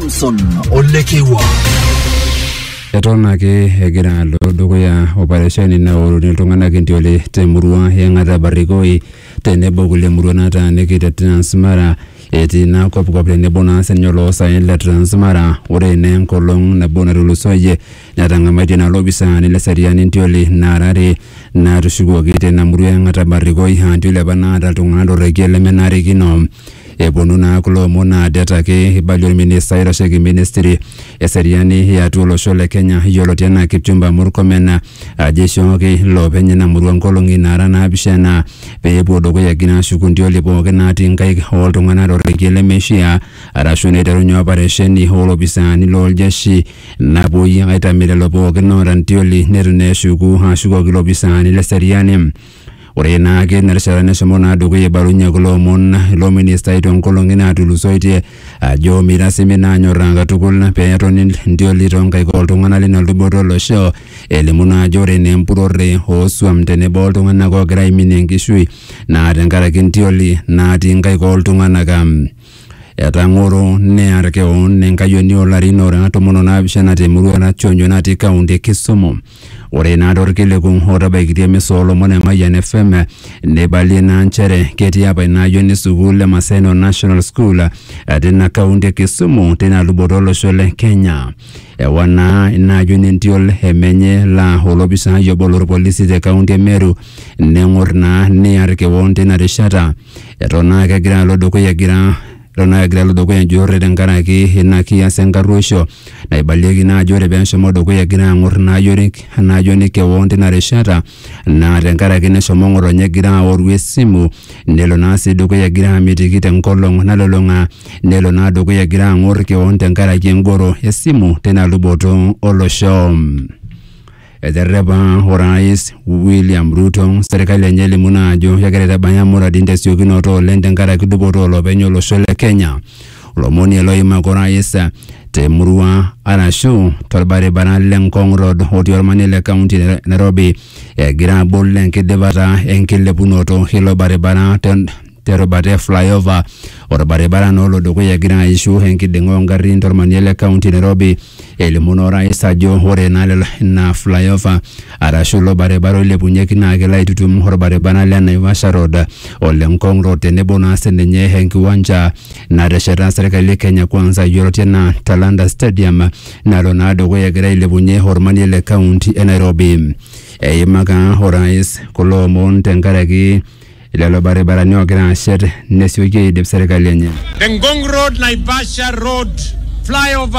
Wilson Olekewa. Eton ake egira alo dukuya operesheni naoruni iltung'anak entiole temurua e Ng'ata Barikoi tenebo kulie murua nataaniki te Transmara etii ina kopkop tenebo naa sininye oloosaen le Transmara ore naa enkolong nabo natulusoyie netang'amaitie naa lopisaani le seriani entioli naara are naatushukuoki teina murua e Ng'ata Barikoi aa entioli apa naata iltung'anak torrekie lemenarikino Eponu naa kulo omon naa det ake eibalie olminista oitasheki ministry eseriani e atua olosho le Kenya yioloti enaa Kipchumba Murkomen ajo eishooki iloopeny ina murua nkolong'i naara naapishana pee epuo dukuya egira aashuku ntioli pooki naatii nkaik ooltung'anak torrekie lemeishiaa arashu neiterunye oparesheni oo lopisaani loo ljeshi napuoi aitamie lelo pooki oota ntioli neitu naa eshuku aashukoki ilopisaani le seriani. Ore naake ina rishata neshomo naa dukuya eibalunye kulo omon ilo ministai toonkolong'i naatulusoitie ajo meitasimi naa anyorraa katukul pee etoni ntioli toonkaik ooltung'anak lina luboto olosho elimu naa ajo ore naa empurrore oosuam tenebo oltung'anak oogira aiminie enkishui naa tenkaraki ntioli naatii nkaik ooltung'anak. Etang'oro near keon enkayioni oolarin oora tomon onaapishana temurua e Rationyo natii kaunti e Kisumu. Ore naa torkiliku otabaikitia emisa oolomon e Mayian FM neibalie naa nchere ketii apa ina ayioni sukuul e Maseno National School tina kaunti e Kisumu tina luboto olosho le Kenya. Ewa naa ina ayioni entiol e menye laa olopisaai obo lorpolisi te kaunti e Meru neng'or naa near keon tina rishata Eton naa kegira alo dukuya egira eton naa kegira alo dukuya enjurrore tenkaraki ina kias enkarruoisho naibalieki naa ajo ore peeshomo dukuya egira ang'or ina ayioni enk- ina ayioni kewon tina rishata naa tenkaraki neshomo ng'otonye egira aoru esimu nelo naa sii dukuya egira amitiki tenkolong nalulung'a nelo naa dukuya egira ang'or kewon tenkaraki engoro esimu tina luboto olosho. Eterrepa Orais William Ruto serkali enye elimu naa ajo kegira aitabaia muradin tesiokinoto oleng tenkaraki dupoto olopeny olosho le Kenya. Lomon ele oimaka orais temurua arashu torbaribara le Ngong Road otii ormanie le kaunti e Nairobi egira abol enkidipata enkilepunoto ilo baribara te terubata e flyover orbaribara naa olo dukuya egira aishu enkiding'a ongarrin tormanie le kaunti Nairobi elimu naa orais ajo ore naa lelo ina flyover arashu ilo baribara oilepunyeki naa kelo aitutum orbaribara le Naivasha Road ole Ngong Road tenebo naa sininye enkiwanja natesheta serkali e Kenya Kwanza yioloti enaa Talanta Stadium nalo naa dukuya egira ailepunyie ormanie le kaunti e Nairobi eimaka orais kulo omon tenkaraki Lelo baribarani oogira aashet nesioki aidip serkali enye. The Ngong Road Naivasha Road flyover